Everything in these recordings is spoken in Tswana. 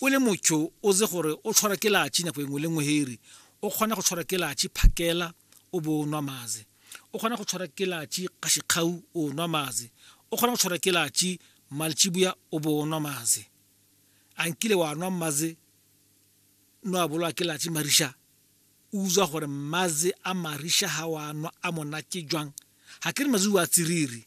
O le mocho o ze gore o tshwara ke lachi nako engwe le ngwe heri. O kgona go tshwara ke lachi phakela o bo o nwa maze. O kgona go tshwara ke lachi kgashikgau o nwa maze. O kgona go tshwara ke lachi malchibuya o bo o nwa maze. A nkile wa nwa maze no a bolwa ke lachi marisha o utswa gore maze a marisha ha wa nwa a monate jwang. Ha ke re maze wa tsiriri.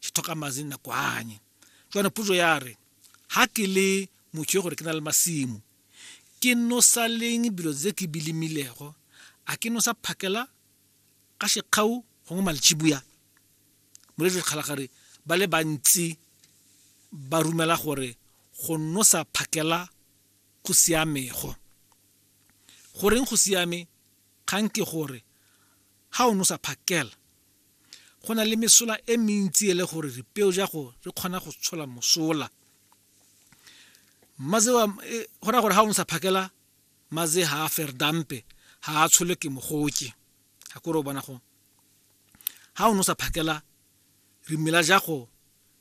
ke tlhoka madi nako anye jwana puso ya re ha ke le motho yo gore ke na le masimo ke nosa leng bilo tse ke bilimilego a ke nosa phakela ka shekgau gongwe malchibuya moletse kgalagare ba le bantsi ba rumela gore go nosa phakela go siamego goreng go siame kgang ke gore ha o nosa phakela Go na le mesola e mentsi e le gore ripeo ja go re kgona go tshola mosola. Maze wa e, go ra gore ha o nsa phakela maze ha a ferdampe ha a tshole ke mogoke. Ha kore o bona go. Ha o no sa phakela rimela ja go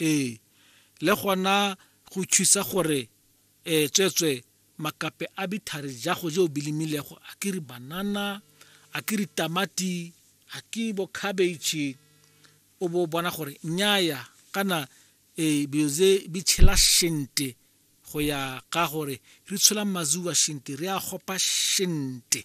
Ee, le gona go thusa gore e tswetswe makape a bithari jago je o bilimilego a ke re banana a ke re tamati a ke bo cabbage o bo bona gore nyaya kana e bioze bi tshela shente go ya ka gore re tshola mazuwa shente re a gopa shente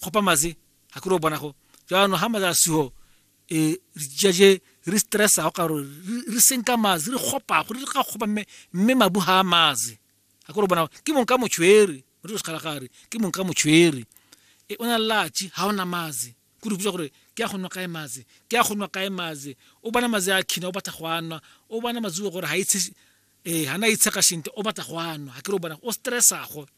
kgopa maze ga kere o bona go jaanong ga maze a siho um e, re jaje re stressa go karo re senka maze re kgopa gore re ka kgopa mme mme mabu ga a maze ga kore o bona ke mong ka motshwere re sekgalagare ke mong ka motshwere e o na latši ga o na maze ko re botsa gore ke ya go nwa kae maze ke ya go nwa kae maze o bona maze a khina o batla go a nwa o bona mazuo gore ga itshe ee ga na itsheka shente o batla go a nwa ga kere o bona o stressago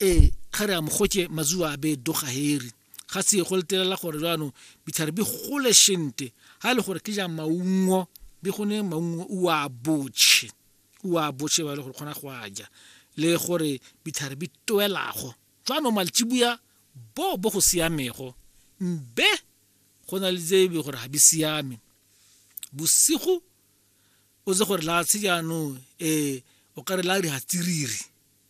ee ga re a mogotse mazuwa a be doga heri ga se go letelela gore jaanong ditlhare di gole shente ga e le gore ke ja maungo di gone maungo o a botšhe o a botšhe ba e le gore kgona go a ja le gore ditlhare di toelago jaanong maltsibuya bo bo go siamego mbe go na le tse e gore ga di siame bosigo o tse gore la se jaanong um o kare la di hatsiriri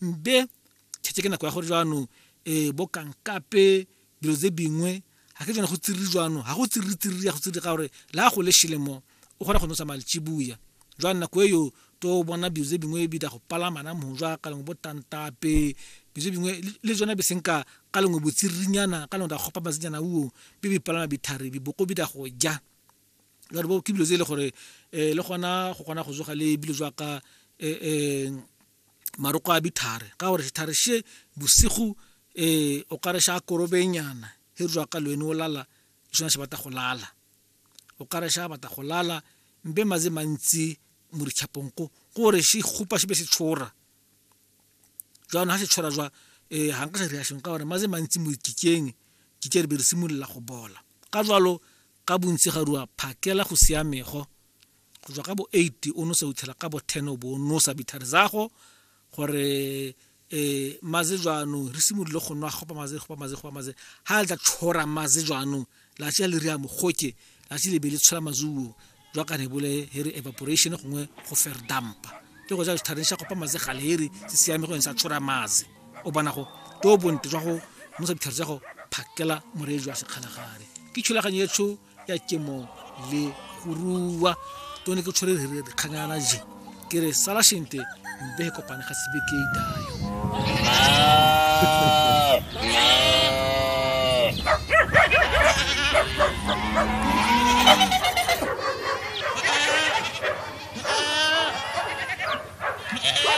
Mbe tšhetse ke nako ya gore jaanong um bo kankape dilo tse dingwe ga ke tsone go tsiriri jwano ga go tsiriri-tsiriri ya go tsiriri ka gore le a go le šelemo o kgona go nosa malchibuya jwa nako e yo to bona dilo tse dingwe bi da go palama na mojwa ka lengwe bo tantape dilo tse dingwe le tsone be senka ka lengwe botsiririnyana ka lengwe da gopa masenyana uo bi bi palama bithari biboko bi da go ja jalo bo ke dilo tse e le gore um le gona go kgona go zoga le bilo jwa ka um maroko a bithare ka gore sethare she bosigo um o kare sha korobenyana he re ka lwene o lala ke sona se batla go lala o kare sha batla go lala mbe maze mantsi mo ditšhapong ko gore se kgopa se be se tshora jaanong ga se tshora jwa um ga nka sa dira sengwe ka gore maze mantsi mo dikikeng kike re be re simolola go bola ka jalo ka bontsi ga rua phakela go siamego go tswa ka bo eight o nosa o itlhela ka bo ten o bo o nosa bithare zago gore um maze jaanong re simolole go nwa gopa maze gopa maze gopa maze ga le tla tshora maze jaanong latsi a le rea mogoke latsi le be le tshola mazuo jwa ka rebole he re evaporation gongwe go fair dumpa ke go ja sethareng sa gopa maze gale he re se siame go yone sa tshora maze o bona go to bonte jwa go nosa dithare tsa go phakela moree jwa sekgalagare ke thulaganyo e tsho ya kemo le go rua to ne ke tshwere re kganyana je ke re sala shente mbe e kopane ga sebe ke dayo